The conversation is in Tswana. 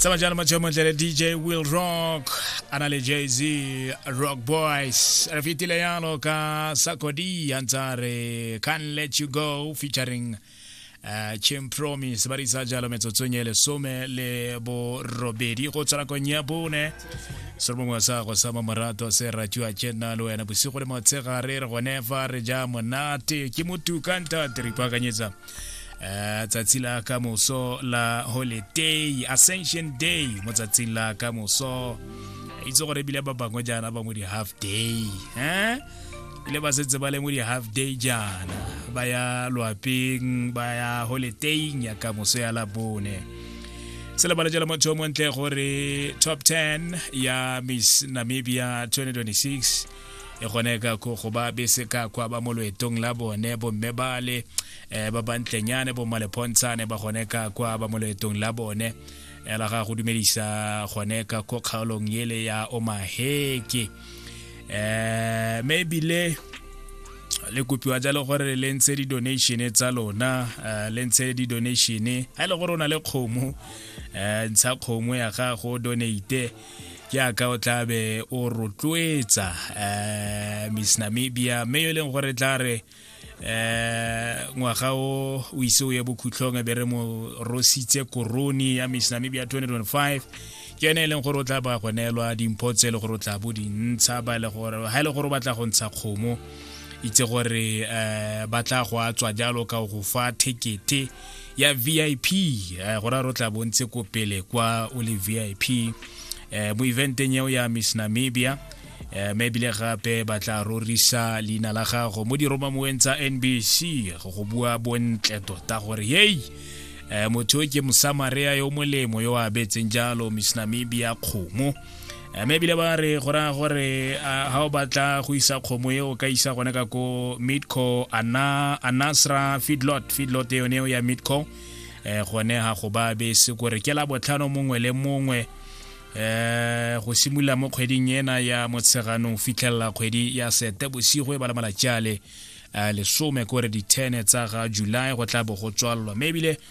tsamaya jalo matšheo montle le dj will rock a na le jz rock boys re fetile yalo ka sakodi a ntsa re can let you go featuring uh, chem promise ba risa jalo metsotsong e lesome le borobedi go tswa nakong ya bone se mongwe wa sa go sa mamorato se ratiwa ke nna le wena bosigo le motshegare re gone fa re ja monate ke motuka ntate re ipaakanyetsa eh, tsatsi la ka moso la holiday ascension day mo tsatsing la ka moso itse gore ebile ba bangwe jaana ba mo di-half day eh? ile ba setse ba le mo di-half day jaana ba ya loapeng ba ya holidayng ya ka moso ya labone se lebala jalo motho montle gore top 10 ya miss namibia 2026 e gone ka go go ba bese ka kwa ba mo loetong la bone bomme bale um ba bantlenyane bommalephontshane ba gone ka kwa ba mo loetong la bone ela ga go dumedisa gone ka ko kgaolong ele ya omaheke um me ebile le kopiwa jalo gore le ntshe di-donation tsa lona um le ntshe di-donation ga e le gore o na le kgomo um ntsha kgomo ya gago donate jaaka o tla be o rotloetsa um miss namibia mme yo e leng gore tla re um ngwaga o o ise o ye bokhutlhong e be re mo rositse koroni ya miss namibia 2025 ke yone e leng gore o tla ba go neelwa dimpho tse e le gore o tla bo dintsha ba e le gore ga e le gore o batla go ntsha kgomo itse gore um ba tla go a tswa jalo ka go fa thekete ya vip eh, go ra ro tla bontse ko pele kwa o le vip eh, mo eventeng eo ya miss namibia eh, mme ebile gape ba tla rorisa leina la gago mo diromamoweng tsa nbc go go bua bontle tota gore yei eh, motho yo ke mosamarea yo molemo yo a abetseng jalo miss namibia kgomo mme ebile ba re go raya gore ga o batla go isa kgomo e o ka isa gone ka ko midco anasra feedlot feedlot e yone eo ya midco um eh, gone ga go ba bese kore ke la botlhano mongwe le mongwe um go simolola mo kgweding ena ya motsheganong fitlhelela kgwedi ya sete bosigo e ba le malatsi a le eh, lesome kore di-ten tsa ga july go tla bo go tswalelwa mme ebile